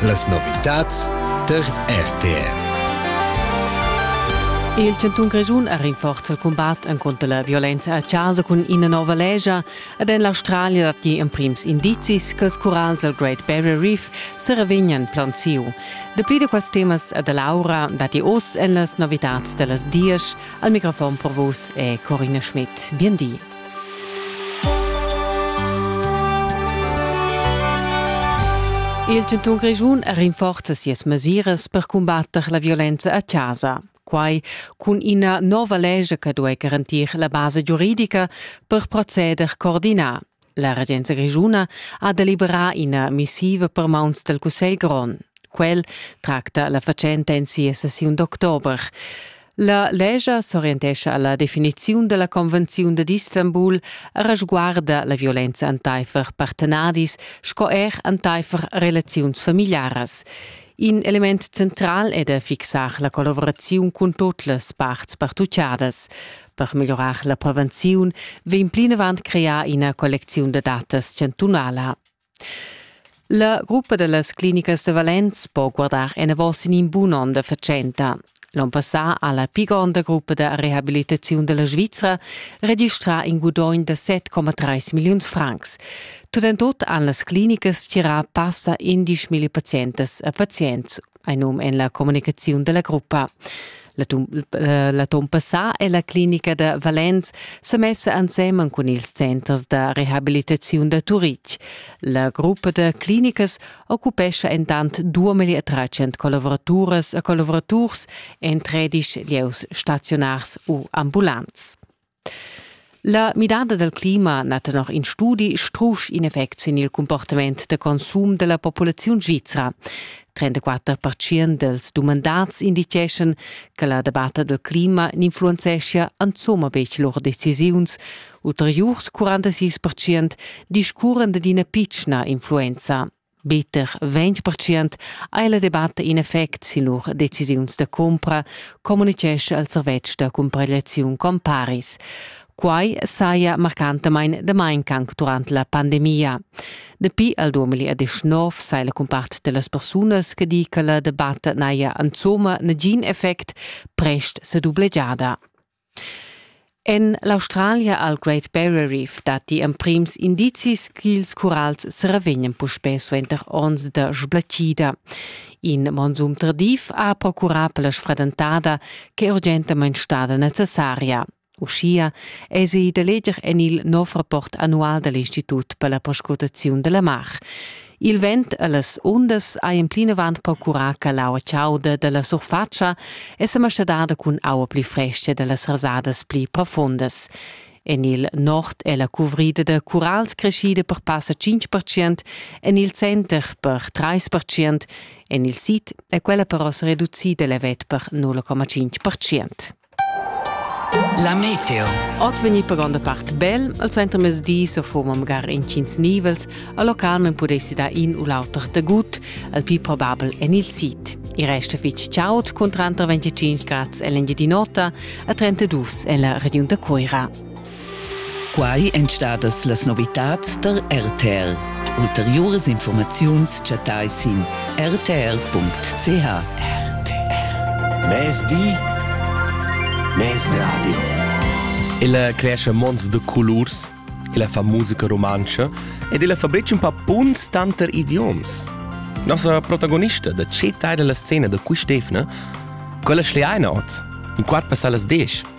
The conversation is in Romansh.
Las novitads tar RTR. Il chantun Grischun ha rinforza il cumbat encunter la violenza a chasa cun ina nova legia ed en l'Australia datti emprims indizis che ils curals dal Great Barrier Reef se revegnan plaunsiu. Dapli da quels temas e da Laura datti oz en las novitads da las dies. Al microfon per vos è Corina Schmidt. Bien di. Il chantun Grischun rinforza sias mesiras per cumbatter la violenza a chasa. Quai cun ina nova lescha che duai garantir la basa giuridica per proceder coordinà. La regenza grischuna ha deliberà ina missiva per mauns dal Cussegl grond. Quel tracta la fatschenta en sia sessiun d'october. La legia s'orientescha alla definiziun dalla convenziun dad Istanbul resguarda la violenza enteifer partenadis sco er enteifer relaziuns familiaras. In element central è da fixar la collaboraziun cun tut las parts partuciadas. Per migliurar la prevenziun vegn plinavant crear ina collecziun da datas chantunala. La gruppa da las clinicas da Valenz po guardar enavos sin in bun onn da fatschenta. L'onn passà ha la pli gronda gruppa da rehabilitaziun da la Svizra registrà in gudogn da 7,3 milliuns francs. Tut en tut han las clinicas tgirà passa 11 000 pazientas e pazients Ein num en la communicaziun dalla gruppa. Eh, l'atun passà è la clinica da Valenz sa messa ensemen cun ils centers da rehabilitaziun da Turitg. La gruppa da clinicas occupescha entant 2300 collavoraturas e collaboraturs en 13 lieus staziunars u ambulants. La midada dal clima na tenor in studi strusch in effect sin il cumportament da consum da la populaziun svizra. 34 percent dals dumandads inditgeschan che la debatta dal clima n'influenzeschia insomma betg lur decisiuns. Ulteriurs 46 percent discurran d'ina pitschna influenza. Bitter 20% ha la debatta in effect sin lur decisiuns da cumpra, communitgescha il servetsch da cumparegliaziun Comparis. Quai saja marcantamain damain anc durant la pandemia. Dapi al 2019 sai la cumpart da las persunas che di che la debatta n'haja insomma nagin effect prest sa dublegiada. En l'Australia al Great Barrier Reef datti emprims indizis ch'ils curals seravegnan puspè suenter onns da sblatgida. In monsum tardiv ha procurà per la sfradentada ch'è urgentamain stada necessaria. Uschia èsi da leger en il nov rapport annual da l'Institut per la perscrutaziun da la mar. Il vent e las undas ein plinavant procurà che l'aua chauda dalla surfatscha è semascadada cun aua pli fresca dallas rasadas pli profundas. En il nord è la cuvrida da curals creschida per passa 5%, en il center per 3%, en il sid è quella però reducida levet per 0,5%. La meteo. Oz vegni per gronda part bel, al suenter mesdi so foma magari incins nivels, a local men pudessi da in u l'auter tagut, al più probabel en il sit. I resta fitg chaud con 35 grads en l'Engiadin'Ota a 32 en la regiun da Coira. Quai èn stadas las novitads tar RTL. Ulteriuras informaziuns chattai sin rtl.ch. Mezdi Mezradio Il cresce mons de colors illa fa musica romantscha ed illa fabrica un pa punts tanter idioms. Nossa protagonista da che tai della scena da quist'efna, quella schleaina oz, in quart passar las 10.